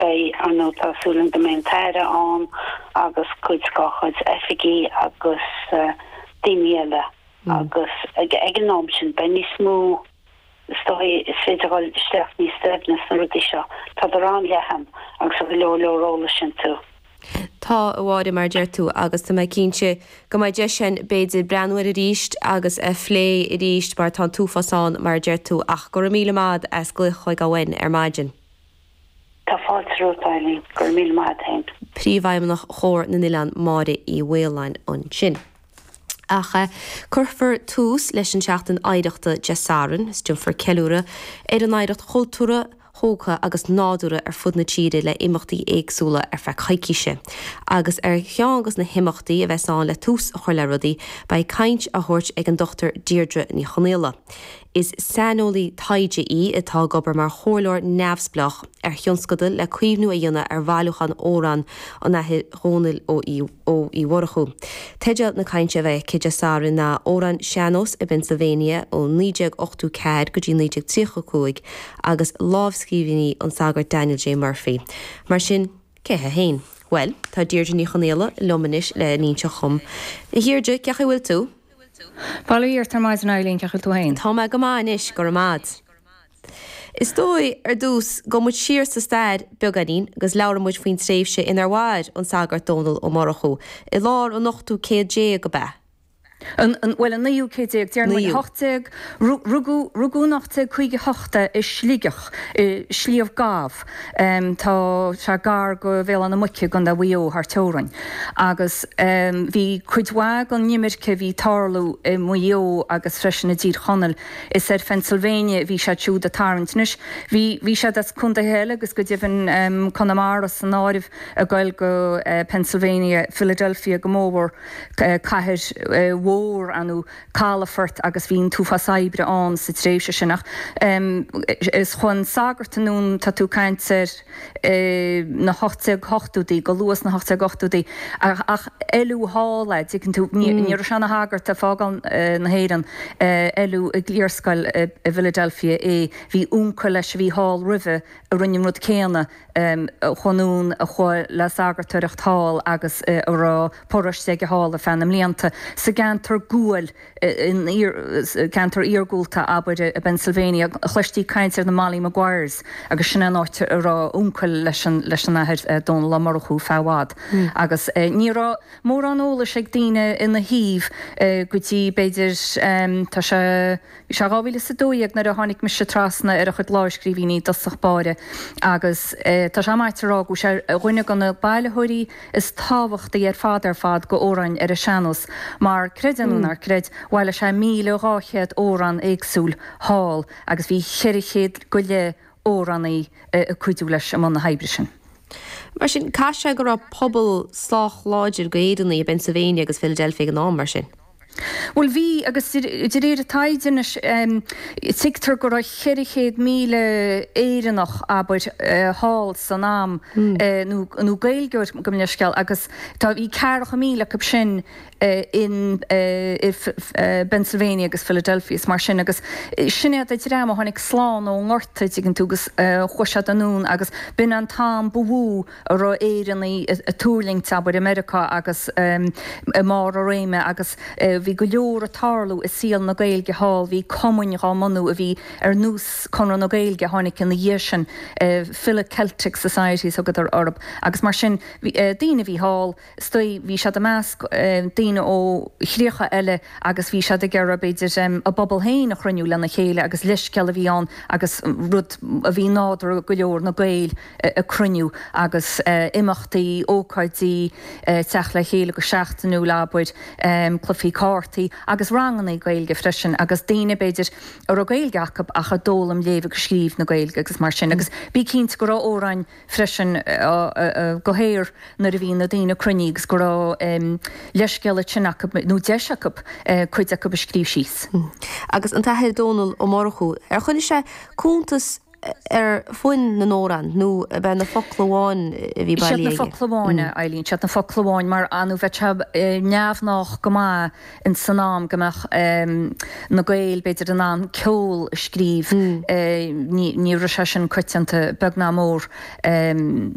Beidh an tá súil ann go mbeidh an tAire ann agus cuid dá chuid oifigigh agus daoine eile agus ag an am sin beidh níos mó, is dóigh, is féidir dhul isteach níos doimhne sna rudaí seo. Tádar an-leathan agus tá go leor leor eolais iontu. Tá, a Mháire, mar a deir tú, agus tá mé cinnte go mbeidh deis ann b'fhéidir breathnú air arís agus a phlé arís mar tá an t-uafás ann, mar a deir tú, ach go raibh míle maith agat as glaoch chuig abhainn ar maidin. Tá fáilte romhat, Eibhlín. Go raibh míle maith a't fhéin. Príomhfheidhmeannach Chomhar na nOileán Máire Uí Mhaoláin ansin. Ach cuirfear tús leis an tSeachtain Oidhreachta Dé Sathairn is déanfar ceiliúradh ar an oidhreacht chultúrtha, thógtha agus nádúrtha ar fud na tíre le imeachtaí éagsúla ar feadh coicíse. Agus ar cheann dos na himeachtaí a bheas ann le tús a chur le rudaí, beidh caint á thabhairt ag an Dr Deirdre Ní Chonghaile. Is saineolaí taighde í atá ag obair mar chomhairleoir neamhspleách ar thionscadal le caomhnú a dhéanamh ar bhailiúchán amhrán an Athar Dhónaill Ó Uí Mhurchú. Teideal na cainte a bheidh aici Dé Sathairn ná 'Amhráin Sean-nóis i bPennsylvania ó 1984 go dtí 1935 agus lámhscríbhinní an tsagairt Daniel J. Murphy'. Mar sin, cé hé féin? Bhuel, tá Deirdre Ní Chonghaile liom anois le n-inseacht dhom. A Dheirdre, cén chaoi a bhfuil tú? Bail ó Dhia ort ar maidin, Eibhlín, cén chaoi a bhfuil tú fhéin? Tá mé go maith anois, go raibh maith a't. Is dóigh, ar dtús, gabhfaidh muid siar sa stair beagáinín agus labhraidh muid faoin tréimhse inar mhair an Sagart Dónall Ó Murchú. I lár an ochtú céad déag ab ea? An, bhuel an naoú céad déag, déarfaidh muid, an hocht déag, rugadh, rugadh in ocht déag caoga hocht é i Sligeach, i Sliabh Gamh. Tá sé gar go Bhéal Átha na Muice i gContae Mhaigh Eo thar teorainn agus bhí cuid mhaith den imirce a bhí ag tarlú i Maigh Eo agus freisin i dTír Chonaill, is ar Phennsylvania a bhí siad siúd ag tarraingt. Anois bhí bhí siad as contaetha eile agus go deimhin Conamara san áireamh ag goil go Phennsylvania, Philadelphia go mór mhór, cathair mhór ann. calafort agus bhí an t-uafás saibhris ann sa tréimhse sin ach chuaigh an sagart anonn tá tú ag caint ar na 1880idí, go luath sna 1880idí ach oileadh thall é, dtuigeann tú, ní raibh sé ina shagart ag fágáil na hÉireann oileadh i gcliarscoil i bPhiladelphia é, bhí uncail leis a bhí thall roimhe a rinne an rud céanna Chuaigh anonn a chuaigh le sagartoireacht thall agus a raibh paróiste aige thall ar feadh na mblianta. Sa gceantar guail, in ceantar iargúlta, abair, i bPennsylvania, chloistí caint ar na Molly Maguires agus sin é an áit a raibh uncail leis an Athair Dónal Ó Murchú feadh i bhfad. Agus ní raibh mórán eolais ag daoine ina thaobh go dtí, b'fhéidir, tá sé. Is é 2012 nuair a tháinig mise trasna ar a chuid lámhscríbhínní i dtosach báire agus tá sé maíte a rá go bhfuil sé ar dhuine de na bailitheoirí is tábhachtaí ar fad ar fad d'amhráin ar an sean-nós mar, creid é nó ná creid, bhailigh sé míle dhá chéad amhrán éagsúil thall agus bhí cheithre chéad go leith amhránaí ag cuidiú leis i mbun na hoibre sin. Mar sin, caithfidh sé go raibh pobal sách láidir d'Éireannaigh i bPennsylvania agus Philadelphia ag an am, mar sin? Bhuel, bhí, agus de réir an taighde anois, tuigtear go raibh 400,000 Éireannach, abair, thall san am, nó Gaeilgeoir gabh mo leithscéal, agus tá, bhí ceathracha míle acu sin i bPennsylvania agus Philadelphia is mar sin, agus sin iad an dream a tháinig slán ón ngorta, an dtuigeann tú, agus chuaigh siad anonn, agus b'in an t-am ba mhó, a raibh Éireannaigh ag tuirlingt, abair, i Meiriceá agus i mbarr a réime agus bhí go leor ag tarlú i saol na Gaeilge thall, bhí cumainn dhá mbunú a bhí ar nós Conradh na Gaeilge a tháinig ina dhiaidh sin, Philo-Celtic societies thugadar orthu agus mar sin bhí daoine a bhí thall, istigh, bhí siad i measc daoine ó chríocha eile agus bhí siad ag iarraidh, b'fhéidir, a bpobal féin a chruinniú lena chéile agus leithscéal a bhí ann agus rud a bhí nádúrtha go leor, na Gaeil ag cruinniú agus imeachtaí, ócáidí teacht le chéile go seachtainiúil, abair, cluichí cártaí agus ranganna Gaeilge freisin agus daoine, b'fhéidir, a raibh Gaeilge acu ach a d'fhoghlaim léamh agus scríobh na Gaeilge agus mar sin agus bí cinnte go raibh amhráin, freisin go háirid nuair a bhí na daoine cruinnithe agus go raibh leithscéal eicínt acu nó deis acu cuid acu a scríobh síos. Agus an tAthair Dónall Ó Murchú, ar choinnigh sé cuntas ar fhoinn na n-amhrán nó ab iad na focla amháin a bhí bailithe aige? Siad na focla amháin, a Eibhlín, siad na focla amháin mar ar ndóigh bheadh sé neamhghnách go maith, in san am go mbeadh na Gaeil b'fhéidir in ann ceol a scríobh, ní raibh sé sin coitianta beag ná mór.